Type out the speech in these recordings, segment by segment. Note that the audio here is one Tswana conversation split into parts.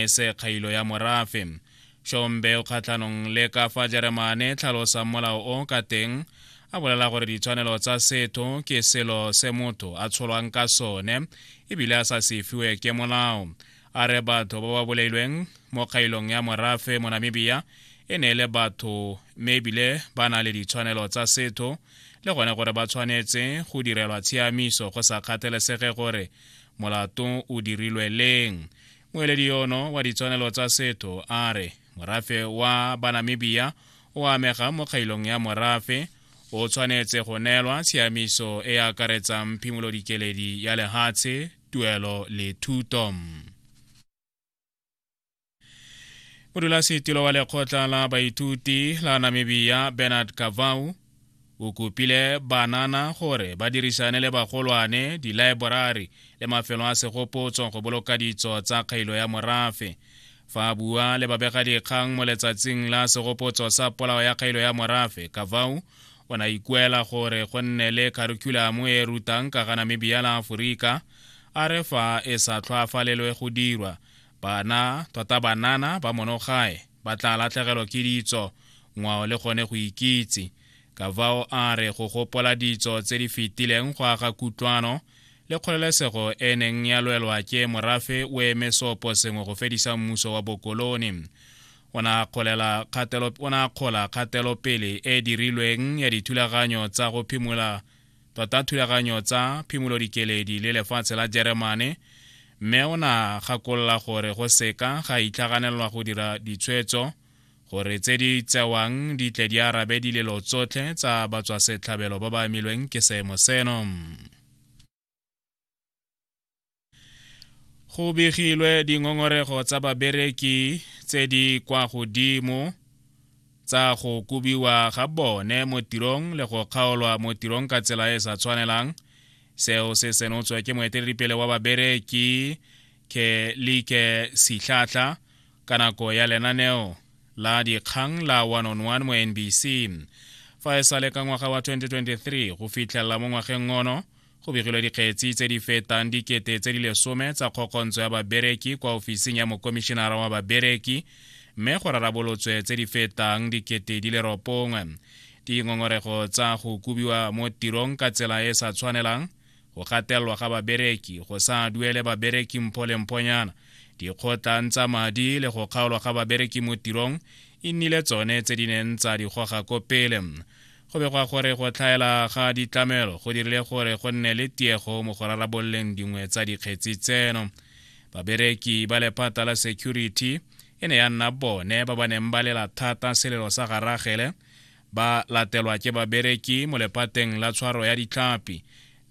e se kgailo ya morafe shombe o kgatlhanong le ka fa jeremane tlhalosang molao o ka teng a bolela gore ditshwanelo tsa setho ke selo se motho a tsholwang ka sone ebile a sa se fiwe ke molao a re batho ba ba bolailweng mo kgailong ya morafe mo namibia e ne e le batho mme ebile ba na le ditshwanelo tsa setho le gone gore ba tshwanetse go direlwa tshiamiso go sa kgathelesege gore molato o dirilwe leng moeledi yono wa ditshwanelo tsa setho a re morafe wa banamibia o amega mo kgailong ya morafe o tshwanetse go neelwa tshiamiso e akaretsang phimolodikeledi ya lehatshe tuelo le thuto modulasetilo wa lekgotla la baithuti la namibia bernard kavau O kopile banana gore ba dirisane le bagolwane, dilaeborari le mafelo a segopotso go boloka ditso tsa kgailo ya morafe. Fa a bua le babegadikgang mo letsatsing la segopotso sa polao ya kgailo ya morafe, Kavau o ne a ikuela gore go nne le kharikhulamo e e rutang ka ga Namibia la Aforika, a re fa e sa tlhwaafalelwe go dirwa, bana, tota banana ba monogae, ba tla latlhegelwa ke ditso ngwao le gone go ikitse ka vao a re go gopola ditso tse di fetileng go aga kutlwano le kgololesego e neng ya lwelwa ke morafe o eme sopo sengwe go fedisa mmuso wa bokoloni o ne a kgola kgatelopele e dirilweng ya dithulaganyo tsa go phimola tota thulaganyo tsa phimolodikeledi le lefatshe la jeremane mme o na gakolola gore go seka ga itlhaganelwa go dira ditshwetso gore tse di tsewang di tle di arabe dilelo tsotlhe tsa batswasetlhabelo ba ba amilweng ke seemo seno go begilwe dingongorego tsa babereki tse di kwa godimo tsa go kobiwa ga bone mo tirong le go kgaolwa mo tirong ka tsela e e sa tshwanelang seo se senotswe ke moeteledipele wa babereki kelike sitlhatlha ka nako ya lenaneo la dikgang la 101 mo nbc fa e sale ka ngwaga wa 2023 go fitlhelela mo ngwageng ono go begilwe dikgetsi tse di fetang dikete tse di lesome tsa kgokgontso ya babereki kwa ofising ya mokomišenara wa babereki mme go rarabolotswe tse di fetang dikete di le ropongwe dingongorego tsa go kubiwa mo tirong ka tsela e sa tshwanelang go gatelelwa ga babereki go sa duele babereki mpho le mphonyana dikgotlang tsa madi le go kgaolwa ga babereki mo tirong e nnile tsone tse di neng tsa di goga ko pele Go begwa gore go tlhaela ga ditlamelo go dirile gore go nne le tiego mo go rarabololeng dingwe tsa dikgetsi tseno. Babereki ba lephata la security e ne ya nna bone ba ba neng ba lela thata selelo sa garagele ba latelwa ke babereki mo lephateng la tshwaro ya ditlhapi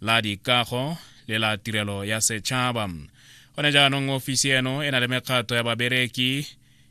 la dikago le la tirelo ya setšhaba gone jaanong ofisi eno e na le mekgato ya babereki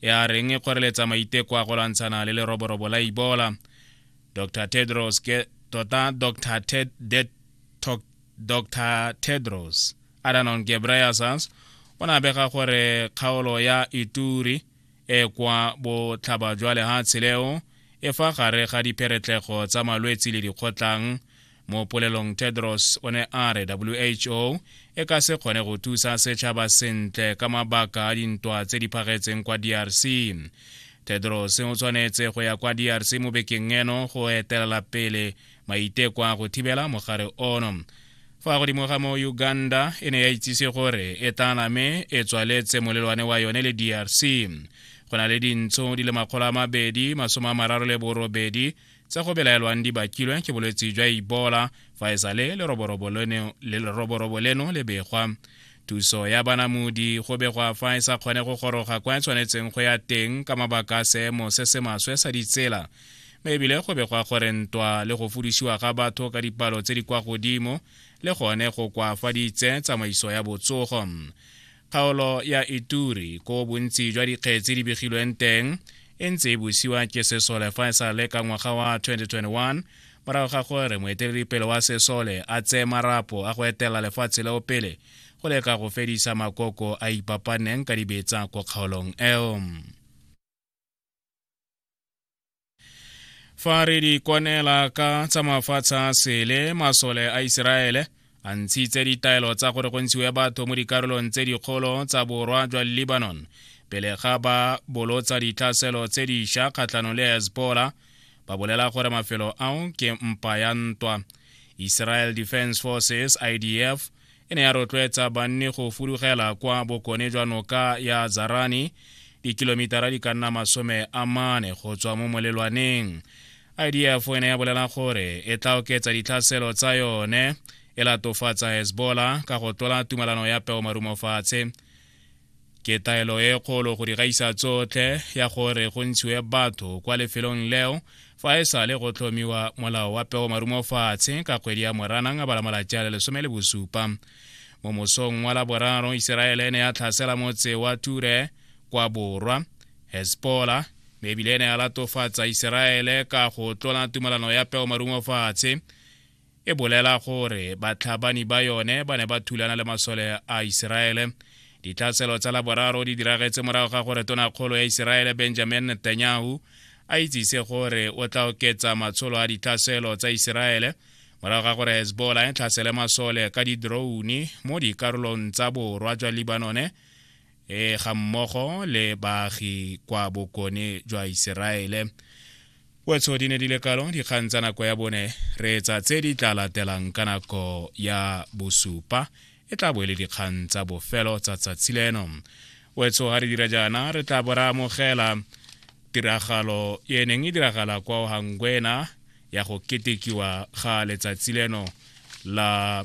e a reng e kgoreletsa maiteko a go lwantshana le leroborobo la ebola dr tedros ke tota dr Ted, Det, Tok, dr tedros adanon gebreyesus o ne a bega gore kgaolo ya ituri e kwa botlhaba jwa lehatshe leo e fa gare ga dipheretlego tsa malwetse le dikgotlang mo polelong tedros o ne a re who e ka se kgone go thusa setšhaba sentle ka mabaka a dintwa tse di phagetseng kwa drc tedros o tshwanetse go ya kwa drc mo bekeng eno go etelela pele maiteko a go thibela mogare ono fa godimo ga mo uganda e ne ya itsise gore e tla name e tswaletse molelwane wa yone le drc go na le dintsho di le makgolo a mabedi masome a mararo le borobedi tse go belaelwang di bakilwe ke bolwetse jwa ebola fa e sale leroborobo leno le begwa thuso ya banamodi go begwa fa e sa kgone go goroga kwa e tshwanetseng go ya teng ka mabaka a seemo se se maswe sa ditsela mme ebile go begwa gore ntwa le go fudisiwa ga batho ka dipalo tse di kwa godimo le gone go kwafaditse tsamaiso ya botsogo kgaolo ya ituri ko bontsi jwa dikgetsi di begilweng teng e ntse e busiwa ke sesole fa e sa le ka ngwaga wa 2021 morago ga gore moeteledipele wa sesole a tseye marapo a go etela lefatshe leo pele go leka go fedisa makoko a ipapaneng ka dibetsa ko kgaolong eo fa re di kwanela ka tsa mafatshe a sele masole a iseraele a ntshitse ditaelo tsa gore go ntshiwe batho mo dikarolong tse dikgolo tsa borwa jwa lebanon pele ga ba bolotsa ditlhaselo tse diša kgatlhanong le hezbollah ba bolela gore mafelo ao ke mpa ya ntwa israel defense forces idf e ne ya rotloetsa banni go fudugela kwa bokone jwa noka ya zarani dikilomitara di ka nna masome a mane go tswa mo molelwaneng idf e ne ya bolela gore e tla oketsa ditlhaselo tsa yone e latofatsa hezbollah ka go tlola tumalano ya peomarumofatshe Ke taelo e kgolo go di gaisa tsotlhe ya gore go ntshiwe batho kwa lefelong leo fa e sale go tlhomiwa molao wa peo marumo fatshe ka kgwedi ya moranang a bala malatsi a le lesome le bosupa mo mosong wa laboraro iseraele ne ya tlhasela motse wa ture kwa borwa hespola mme ebile ne ya latofatsa iseraele ka go tlola tumelano ya peo marumo fatshe e bolela gore batlhabani ba yone ba ne ba thulana le masole a iseraele ditlhaselo tsa laboraro di diragetse morago ga gore tonakgolo ya iseraele benjamin netanyahu a itsise gore o tla oketsa matsholo a ditlhaselo tsa iseraele morago ga gore hezbollah e tlhasele masole ka didroune mo dikarolong tsa borwa jwa libanone e ga mmogo le baagi kwa bokone jwa iseraele wetso di ne di le kalo dikgang tsa nako ya bone re etsa tse di tla latelang ka nako ya bosupa e tla bo e le dikgang tsa bofelo tsa tsatsi leno wetso ga re dira jaana re tla bo re amogela tiragalo e neng e diragala kwa ohangwena ya go ketekiwa ga letsatsi leno la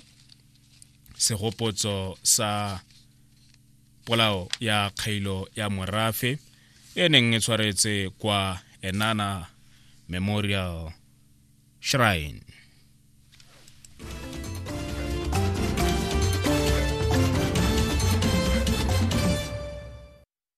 segopotso sa polao ya kgailo ya morafe e neng e tshwaretse kwa enana memorial shrine